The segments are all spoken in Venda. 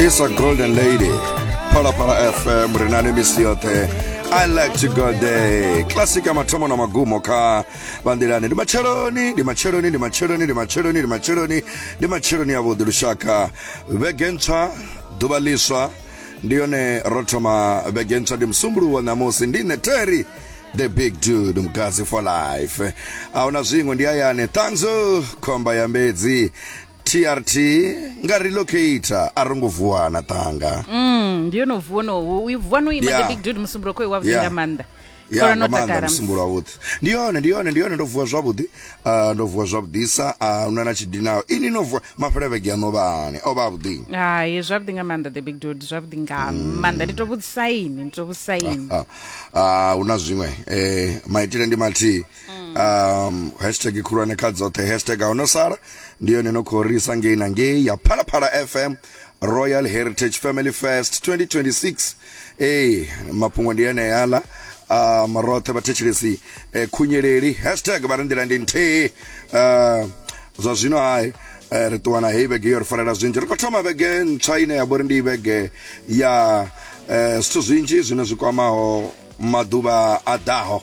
It's a golden lady. Pala Pala FM ri na ni misi yoṱhe I like to go there classic ya mathomo na magumo kha vanḓilani ndi matsheloni ndi matsheloni ndi matsheloni ndi matsheloni ndi matsheloni ndi matsheloni ya vhuḓi lushaka vhege ntswa ḓuvha ḽiswa ndi yone ro thoma vhege ntswa ndi musumbuluwo ṋamusi ndi nṋe terry the big dude mgazi for life ahuna zwiṅwe ndi hayani ṱanzu khomba ya mbedzi trt nga relocator a ro ngo vuwa na ṱanga Mm, ndi yono vuwa no u vuwa no ima Yeah. the big dude musumbulo kho wa vunga Yeah. manda ya Khona nga no maanḓa takala. musumbulo wavhuḓi ndi yone ndi yone ndi yone ndo vuwa zwavhuḓi Ah, ndo vuwa zwavhuḓisa a una na tshidinaho ini no vuwa mafhele vhege ya ṋovhani o vha avhuḓi hayi zwavhuḓi nga maanḓa the big dude zwavhuḓi nga Mm. maanḓa ndi to vhudzisaini ndi to vhudzisaini Ah, ah, hu na zwiṅwe eh, maitele ndi mathihi mm. um hashtag khulwane kha dzoṱhe hashtag a sala ndi yone no khou risa ngei na ngei ya phalaphala fm royal heritage family fest 2026 ee mafhungo ndi eneyaḽa um roṱhe vhathetshelesi eh, khunyeleli hashtag vha ri nḓila ndi nthihi uh, zwa zwino hai Eh, ri ṱuwa na heyi vhege yo ri farela zwinzhi ri khou thoma vhege ntswa ine ya vhori ndi vhege ya eh, zwithu zwinzhi zwine zwi kwamaho maḓuvha a ḓaho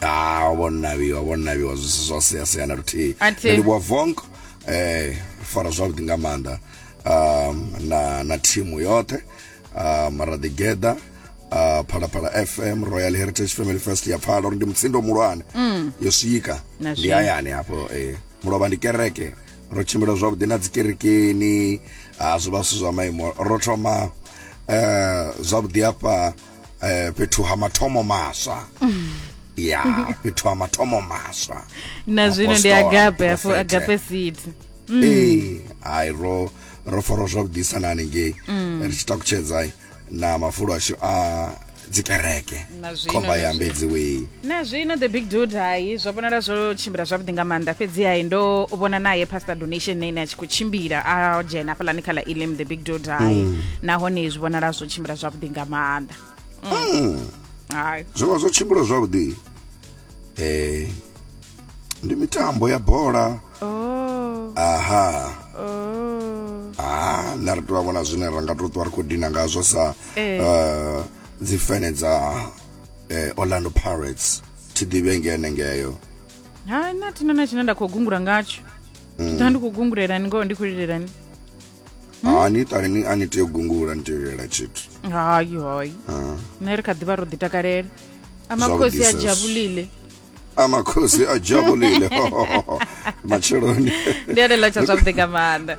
ah o vhonavhiwa o vhonavhiwa zwi si zwa sea sea na luthihi nṋe ndi vhuwa vonk eh fara zwavhuḓi nga maanḓa um na na thimu yoṱhe um ra ḓi geḓa uh, phalaphala fm royal heritage family fest ya phala uri ndi mutsindo muhulwane mm. yo swika ndi hayani hafho eh mulovha ndi kereke ro tshimbila zwavhuḓi na dzikerekeni a ah, zwi vha zwithu zwa maimo ro thoma um zwavhuḓi hafha uh, eh fhethu ha mathomo maswa ya fhethu ha mathomo maswa na zwino ndi Apostle, agape afho prophet. agape seed ee hai ro ro fara zwavhuḓisa na hanengei ri tshi takutshedza na mafulo ashu a dzikereke Na zwino, khomba na ya zwino. mbedziwei Na zwino the big dude hai zwo vhonala zwo tshimbila zwavhuḓi nga maanḓa fhedzi hai ndo vhona naye pastor donation na ine a tshi khou tshimbila a dzhena hafhaḽani kha ḽa elim the big dude hai Mm. nahone zwi vhonala zwo tshimbila zwavhuḓi nga maanḓa Mm. hai zwo vha zwo tshimbila zwavhuḓi eh ndi mitambo ya bola oh aha oh ah na ri tou vhona zwine ra nga tou ṱwa ri khou dina ngazwo sa Eh. eh, dzifene dza eh, orlando pirates thi ḓivhe nge henengeyo ha na thina na tshine nda khou gungula ngatsho mm. ḓa ndi khou gungulelani ngoho ndi khou lilelani ha ni ṱale ni a ni tea u gungula ni tea u lilela tshithu hayi hayi nṋe ri kha ḓi vha ro ḓitakalela amakhosi a jabulile amakhosi a jabulile matsheloni ndi a lela tsha zwavhuḓi nga maanḓa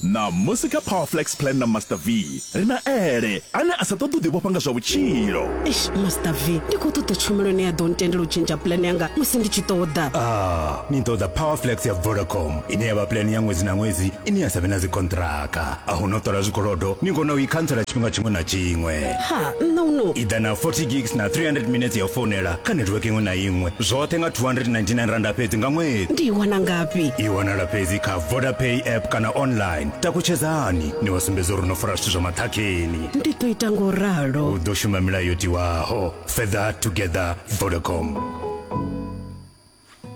Ṋamusi kha Powerflex Plan na Master V, ri na Ele, ane a sa ṱoḓi u ḓivhofha nga zwa vhutshilo. Eish, Master V, ndi khou ṱoḓa tshumelo ine ya ḓo ntendela u tshentsha plan yanga musi ndi tshi ṱoḓa. Ah, ni ṱoḓa Powerflex ya Vodacom, ine ya vha plan ya ṅwedzi na ṅwedzi ine ya sa vhe na dzikonṱhiraka. A hu na u ṱola zwikolodo, ni kona u i khantsela tshifhinga tshiṅwe na tshiṅwe. Ha, nṋe u no. I ḓa na 40 gigs na 300 minetse ya u founela kha network iṅwe na iṅwe, zwoṱhe nga R299 fhedzi nga ṅwedzi. Ndi i wana ngafhi? I wanala fhedzi kha. vodapay app kana online takutshedzani ni vha sumbedza uri no fara zwithu zwa maṱhakheni ndi ḓo ita ngo ralo u ḓo shuma milayo yo tiwaho further together vodacom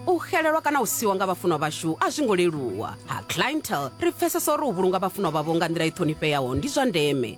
u xelelwa kana u siwa nga vhafunwa vhashu a zwi ngo leluwa ha clientel ri pfesesa uri u vhulunga vhafunwa vhavho nga nḓila i ṱhonifheaho ndi zwa ndeme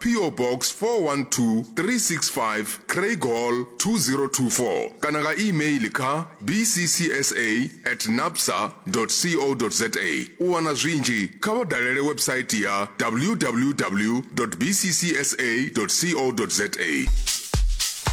PO Box 412365 Craighall 2024 kana nga e-mail kha bccsa at napsa co za. U wana zwinzhi kha vha dalele website ya www bccsa co za.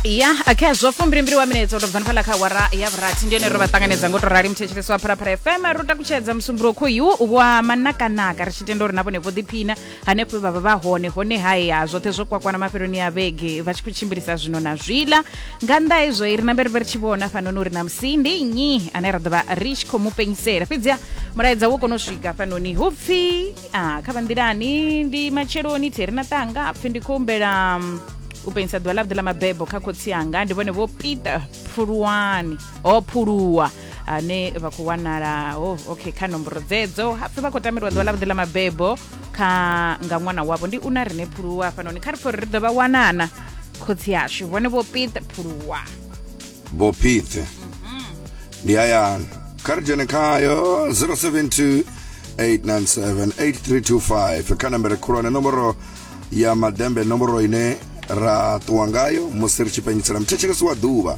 ya okay zwo fumbilimbili wa minetse u tou bva ni fhaḽa kha awara ya vhurathi ndi yone ro vha ṱanganedza ngo to rali muthetshelesi wa phalaphala fm ro takutshedza musumbulowo khoyu wa manakanaka ri tshi tenda uri na vhone vho ḓiphina hanefho vha vha vha hone hone haya zwoṱhe zwo kwakwana mafheloni ya vhege vha tshi khou tshimbilisa zwino na zwiḽa nga nnḓa hezwo i ri nambe ri vhe ri tshi vhona fanoni uri na musi ndi nnyi ane ra ḓo vha ri tshi khou mu penyisela fhedziha mulaedza wo kona u swika fanoni hu pfhi a kha vhanḓilani ndi matsheloni thi ri na ṱanga pfhi ndi khou humbela mm, u penyisa ḓuvha ḽavhuḓi ḽa mabebo kha khotsi anga ndi vhone vho peter phuluwani o phuluwa ane vha khou wanala oh, okay kha nomboro dzedzo hapfi vha khou tamelwa ḓuvha ḽavhuḓi ḽa mabebo kha nga ṅwana wavho ndi una rine phuluwa hafhanoni kha ri pfo ri ḓo vha wanana khotsi yashu vhone vho pite phuluwa vho pite ndi hayani kha ri dzhene khayo 072 897 8325 kha nambere khulwane nomboro ya madembe nomboro ine ra ṱuwa ngayo musi ri tshi penyisela muthetshelesi wa ḓuvha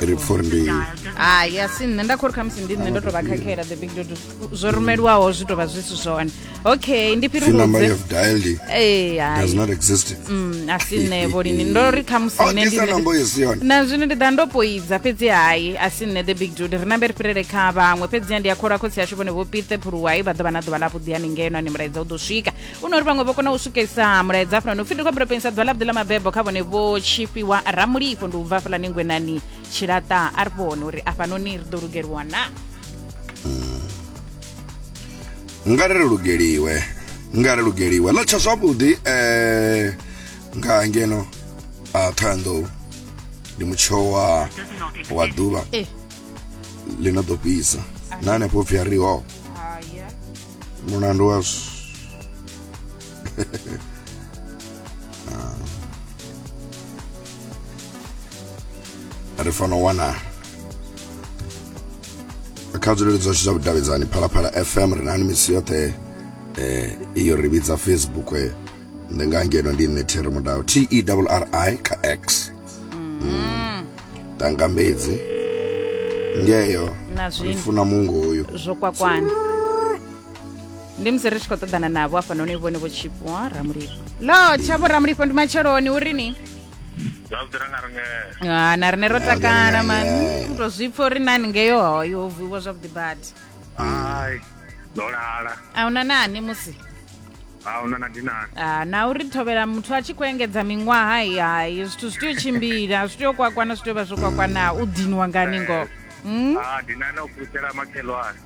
ri pfurindini hai ah, asi nṋe nda khori khamusi ndi nṋe ndo to vha khakhela the big dodo zwo rumeliwaho zwi to vha zwi si zwone okay ndi fhirihudze eh, mm, asi nṋe vholini ndo ri khamusi oh, nṋe ndi na zwino ndi ḓa ndo poidza fhedzi hai asi nṋe the big dodo ri nambe ri fhirele kha vhaṅwe fhedziha ndi a khola khotsi yashu vhone vho pithe phuluwai vha ḓo vha na ḓuvha ḽavhuḓi haningeno ani mulaedza u ḓo swika u no ri vhaṅwe vho kona u swikesa mulaedza hafhanoni upfi ndi khou ambela pengisa ḓuvha ḽavhuḓi ḽa mabebo kha vhone vho tshifhiwa ramulifho ndi u bva hafhalani ngwenani tshilaṱa a ri vhone uri afhanoni ri ḓo lugeliwa na nga ri lugeliwe nga ri lugeliwe ḽa tsha zwavhuḓi eh nga ngeno a thoyandou ndi mutsho wa wa ḓuvha eh ḽi no ḓo fhisa na hanefho pfhi a ri ho Mulandu wa ah. ri fanela u wana kha dzulelo dzashu dza vhudavhidzani phalaphala fm ri nani misi yoṱhe um iyo ri vhidza facebook eh. ndi nga ngeno ndi nṋe there mudau t e double r i kha x mm. tangambedzi ngeyo ri funa mungo uyu zwo kwakwana ndi musi ri tshi khou ṱoḓana navho afhanoni vhone vho tshipo ramulifho lo tshavho ramulifho ndi matsheloni uri ni ha na rine ro takala mani u to zwi pfa uri nani ngeyo hoyo vuiwa zwavhuḓi badi a una nani musi ha una na dinari Ah, na uri thovhela muthu a tshi khou engedza miṅwaha hai hai zwithu zwi tea u tshimbila zwi tea u kwakwana zwi tea u vha zwo kwakwana u dinwa ngani ngoho Mm? ha dinari o fhulufhela makhelwane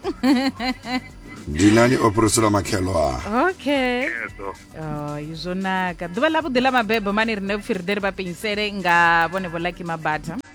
dinani o fhiriselwa makhelo a okay ezo Oh, izvo naka ḓuvha ḽavhuḓi ḽa mabebo mani rine vhupfi ri ḓe ri vha penyisele nga vhone vho laki mabata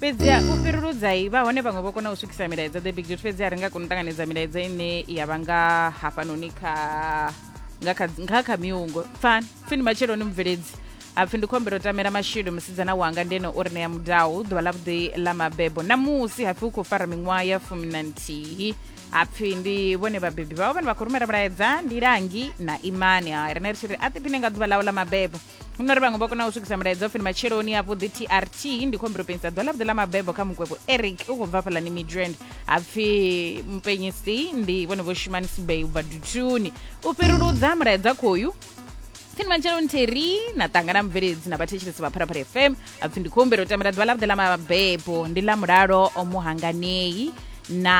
fhedziha u fhiruludzai vha hone vhaṅwe vho kona u swikisa milaedza the big duty fhedziha ri nga kona u ṱanganedza milaedza ine ya vha nga hafhanoni kha nga kha nga kha miungo pfani pfini matsheloni mubveledzi apfi ndi khombelo tamela mashidu musidzana wanga ndene o ri ṋea mudau ḓuvha ḽa vhuḓi ḽa mabebo namusi hapfi u khou fara miṅwaha ya fumi na nthihi hapfi ndi vhone vhabebi vhawe vhane vha khou rumela mulaedza ndi langi na imani ha riṋe ri tshi ri a ḓiphine nga ḓuvha ḽawe ḽa mabebo hu no ri vhaṅwe vha kona u swikisa mulaedza ofini matsheloni avhuḓi trt ndi khou humbela u penyisa ḓuvha ḽavhuḓi ḽa mabebo kha mukwevho eric u khou bva fhalani midrand ha pfi mupenyisi ndi vhone vho shumani sibey u bva dutuni u fhiruludza mulaedza khoyu pfini matsheloni theri na ṱangana mubveledzi na vhathetshelesi vha pharaphala fm ha pfi ndi khou humbela u tambela ḓuvha ḽavhuḓi ḽa mabebo ndi ḽa mulalo o muhanganei na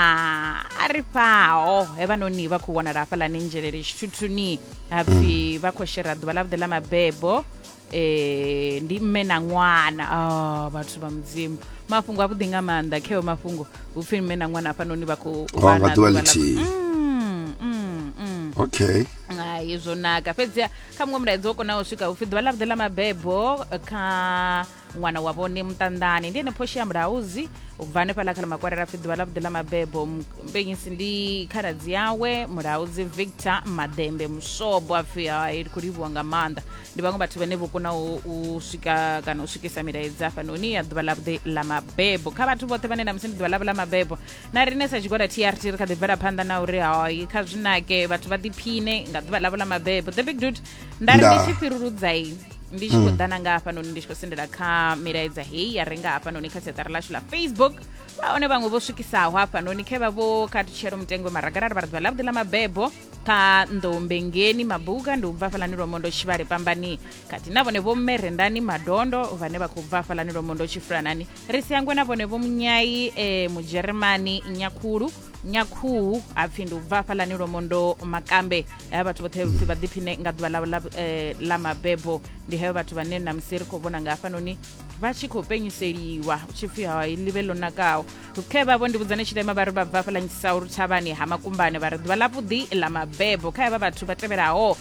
a ri fhaho he vhanoni vha khou wanala hafhalani nzhelele tshithuthuni hapfi vha khou shera ḓuvha ḽa vhuḓe ḽa mabebo eh ndi mme na ṅwana ah vhathu vha mudzimu mafhungo a vhuḓi nga maanḓa kheo mafhungo hupfi mme na ṅwana hafhanoni vha khou Oh, vha nga na ḓuvha ḓuvha ḽa- ḽithihi. Mm, mm, mm. okay Hai, zwo naka fhedziha kha muṅwe mulaedza wo konaho u swika upfi ḓuvha ḽa vhuḓe ḽa mabebo eh, kha ṅwana wa vhone muṱanḓani ndi ene phoshi ya mulauzi u bva hanefhaḽa kha ḽa makwarela pfi ḓuvha ḽa vhuḓi ḽa mabebo mpenyisi ndi khaladzi yawe mulauzi victor maḓembe mushobo a pfi hai ndi khou livhuwa nga maanḓa ndi vhaṅwe vhathu vhane vho kona u swika kana u swikisa milaedza hafhanoni ya ḓuvha ḽa vhuḓi ḽa mabebo kha vhathu vhoṱhe vhane na musi ndi ḓuvha ḽavho ḽa mabebo na rine sa tshigwada trt ri kha ḓi bvela phanḓa na uri hai kha zwinake vhathu vha ḓiphine nga ḓuvha ḽavho ḽa mabebo the big dut nda ri ndi tshi fhiruludzai ndi tshi khou ḓana nga hafhanoni ndi tshi khou sendela kha milaedza heyi ya renga hafhanoni kha siaṱari lashu ḽa facebook a one vhaṅwe vho swikisaho hafhanoni khe vha vho kha tshelo mutengo maragalala vha ri ḓuvha ḽavhuḓi ḽa mabebo kha nḓoumbengeni mabuka ndi u bva hafhalani lwomondo tshivhale pambani khathihi na vhone vho mme rendani madondo vhane vha khou bva hafhalani lwomondo tshifulanani ri si hangwe na vhone vho munyayi um mudzheremani nyakhulu nyakhuhu hapfi ndi u bva hafhaḽani lomondo makambe haya vhathu vhoṱhe pfi vha ḓiphine nga ḓuvha ḽavho ḽa, eh, ḽa mabebo ndi heyo vhathu vhane na musi ri khou vhona nga hafhanoni vha tshi khou penyiseliwa hu tshi pfi ha ḽivhe ḽo nakaho khe vhavho ndi vhudzane tshilema vha ri vha bva hafhaḽa nyisaulu thavhani ha makumbane vha ri ḓuvha ḽavhuḓi ḽa mabebo kha havha vhathu vha tevhelaho